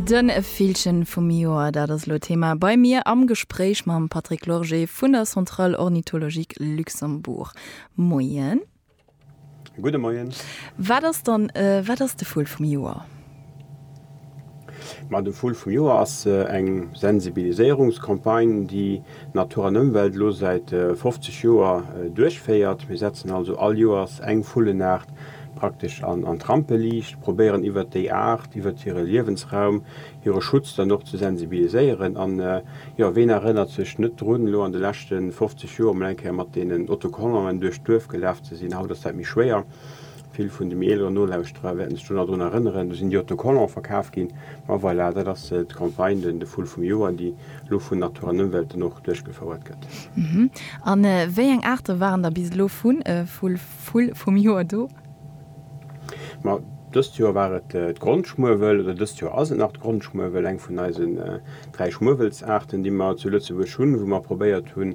De Villchen vum Joer, dat ass elo Thema bei mir am Gespréich mam Patrick Lorgé vun der Centrale Ornithologique Luxembourg. Moien. Gudde Moien. Wat ass dann, wat ass de Vull vum Joer? Ma de Vull vum Joer ass eng Sensibiliséierungscampagne, déi. Natur an Ëmwelt elo säit 50 Joer duerchféiert. Mir setzen also all Joers eng Vullenaart praktesch an d'Rampeliicht, probéieren iwwert déi Aart, iwwert hire Liewensraum, hire Schutz dann och ze sensibiliséieren. An jo, ween erënnert sech net drun, elo an de leschte 50 Joer mol eng Kéier mat deenen Autocollanten duerch d'Duerf gelaf ze sinn. Haut ass dat méi schwéier. Vill vun de méi eeleren Nolauschterer wäerten sech do nach drun erënneren. Do sinn déi Autocollants verkaf ginn. Ma voilà, dat ass d'Campagne den de Vull vum Joer, déi elo vun Natur an Ëmwelt den och duerchgefouert gëtt. Hm. A wéi eng Aarte waren da bis elo vun Vull vum Joer do? Ma dëst Joer war et d'Grondschmuewel, oder dëst Joer ass et nach d'Grondschmuewel, eng vun eisen dräi Schmuewelsaarten, déi mer zu Lëtzebuerg hunn, wou mer probéiert hunn,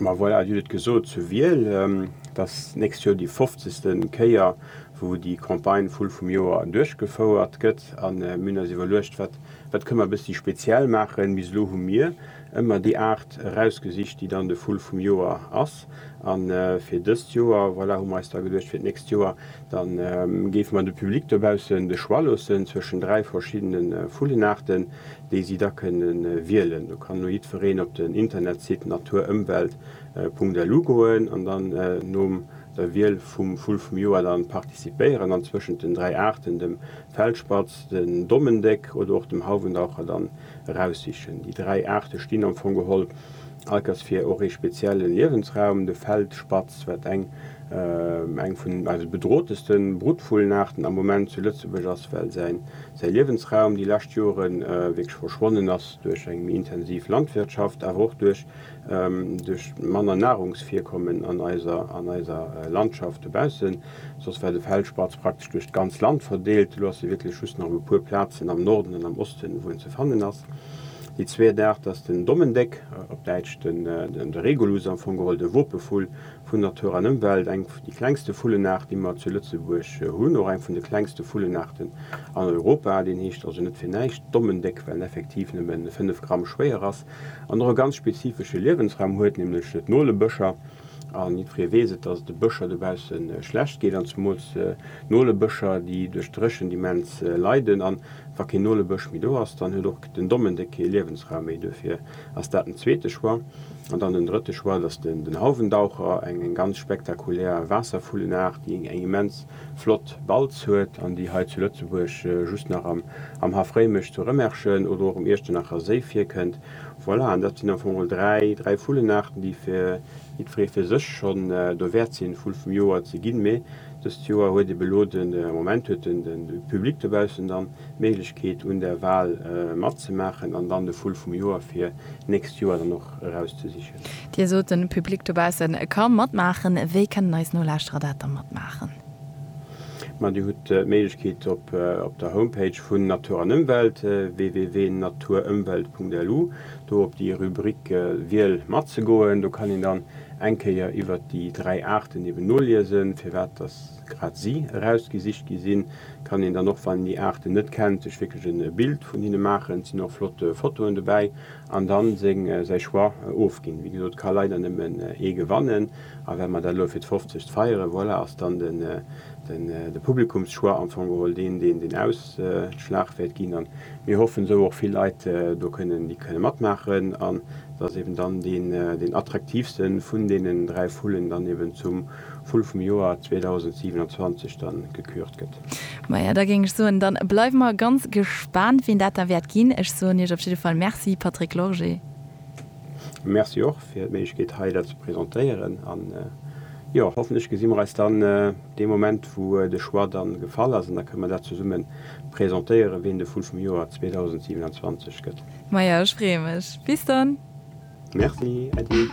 Ma voilà, Dir hutt et gesot, zu Wiel, et ass d'nächst Joer déi fofzegste Kéier, wou déi Campagne Vull vum Joer duerchgefouert gëtt. A mir hunn eis iwwerluecht, wat, wat kënne mer e bëssi speziell maachen. Bis elo hu mir ëmmer déi Aart erausgesicht, déi dann de Vull vum Joer ass. A fir dëst Joer, voilà, hu mer eis da geduecht, fir d'nächst Joer, da géife mer de Public dobaussen de Choix loossen zwëschen dräi verschiddene Vullenaarten, déi si da kënne wielen. Do kann elo jiddwereen op den Internetsite naturëmwelt.lu goen an dann nom der Wiel vum Vull vum Joer dann participéieren an zwëschent den dräi Aarten, dem Feldspatz, den Dommendéck oder och dem Hauwendaucher, dann eraussichen. Déi dräi Aarte stinn am Fong geholl allkes fir och ee spezielle Liewensraum. De Feldspatz, wat eng eng vun eise bedrohteste Bruttvullenaarten am Moment zu Lëtzebuerg ass, well säi säi Liewensraum déi lescht Jore wierklech verschwonnen ass duerch eng méi intensiv Landwirtschaft, awer och duerch duerch manner Nahrungsvirkommen an eiser an eiser Landschaft dobaussen. Soss war de Feldspatz praktesch duerch d'ganz Land verdeelt, elo ass e wierklech just nach op e puer Plazen am Norden an am Osten, wou en ze fannen ass. Déi zweet Aart ass den Dommendéck, op Däitsch de Regulus, am Fong geholl de Wopevull. vun Natur an Ëmwelt eng vun de klengste Vullenaart, déi mer zu Lëtzebuerg hunn, och eng vun de klengste Vullenaarten an Europa. Deen heescht also net fir näischt Dommendéck, well en effektiv nëmme 5 Gramm schwéier ass an och e ganz spezifesche Liewensraum huet, nämlech d'Nolebëscher. An jiddweree weess et, dass et de Bëscher dobausse schlecht geet an zemools Nolebëscher, déi duerch d'Dréchent immens leiden. A wa keen Nolebësch méi do ass, dann huet och den Dommendéck kee Liewensraum méi. Duerfir. ass dat den zweete Choix. An dann den drëtte Choix, dat ass den Hauwendaucher, eng ganz spektakulär Waasservullenaart, déi eng immens flott Balz huet an déi hei zu Lëtzebuerg just nach am Haff Réimech zu Rëmerschen oder och um Iechternacher Séi virkënnt. Voilà, an dat sinn am Fong mol dräi Vullenaarten, déi fir jiddweree fir sech schonn do wäert sinn, Vull vum Joer ze ginn. Mee dëst Joer huet ebe lo de Moment, huet de Public dobaussen dann D'Méiglechkeet un der Wal matzemaachen an dann de Vull vum Joer fir d'nächst Joer dann och erauszesichen. Dir sot, de Public dobausse ka matmaachen. Wéi kënnen eis Nolauschterer dat da matmaachen? Ma Dir hutt d'Méiglechkeet op der Homepage vun Natur an Ëmwelt, www.naturëmwelt.lu, do op déi Rubrik Wiel mat ze goen. Do kann een dann eng Kéier iwwert déi dräi Aarten eben noliesen, firwat dass grad si erausgesicht gi sinn, kann een dann och wann een déi Aarten net kennt sech wierklech en Bild vun hinne maachen. Et sinn och flott Fotoen dobäi an dann seng säi Choix ofginn. Wéi gesot ka leider nëmmen ee gewannen a well mer dat elo fir d'fofzegt feieren, voilà ass dann de Publikumschoix am Fong geholl deen deen den Ausschlag wäert ginn an mir hoffen esou och vill Leit do kënnen déi kënne matmaachen an dass eben dann deen attraktiivste vun deenen dräi Vullen dann eben zum Vull vum Joer 2027 dann gekürt gëtt. Maja, da géing ech soen, da bleiwe mer ganz gespaant, wien dat da wäert ginn. Ech soen Iech op jidde Fall Merci, Patrick Lorgé. Merci och fir d'Méiglechkeet, hei dat ze presentéieren. A jo, hoffentlech gesi mer eis dann dee Moment, wou de Choix dann gefall ass, an da kënne mer dat zesumme presentéieren, wien de Vull vum Joer 2027 gëtt. Maja, ech freeë mech. Bis dann! Merci, äddi!